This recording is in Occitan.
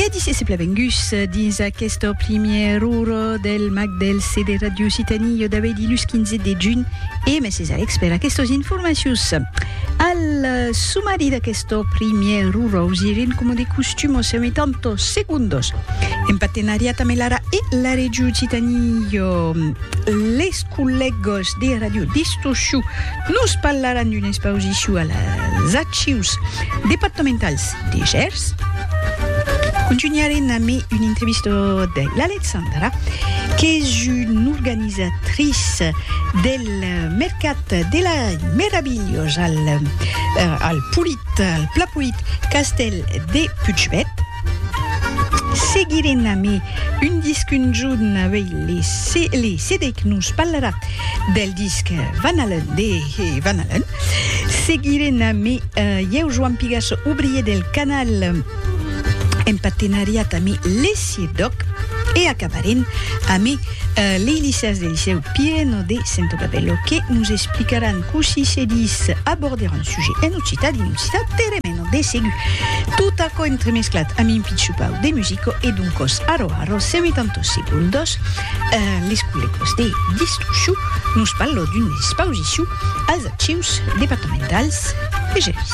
E dise se plavenguss dins aquesta primièra ora del mag del C de Ràdio Occitanie jo davei dilus 15 de junh e mèsses Alex per aquestos informacius. Al sumari d'aquesta primièra ora us iren coma de costum o seu tanto segundos en partenariat amb l'ara e la Ràdio Occitanie les collègos de Ràdio Distorsiu Nos parlaràn d'una expausicion a las Archius departamentals de Gèrs. Contunharem amé una entrevista de l'Alexandra, qu'es una organizatrice del mercat de la Meravilhós al Pla Polit Castèl de Puigverd. Seguirem amé un disc un jorn avei le CD que nos parlarà del disc Van Halen de Van Halen. Seguirem amé ieu Joan Pigasso, obrier del canal en partenariat amé Lesiedòc e acabarem amé lei liceas de Licèu Pireno de Sentobabello que nos explicaràn cossí se dis aborder un Sujet en occitan e occitan peremeno de segur. Tot aquò entremesclat amb un pitchupau de musico e d'un còs aro aro seguit en tot segon dos les collecos de Distrucciu nos parlò d'una expausicion als Archius departamentals de Gelís.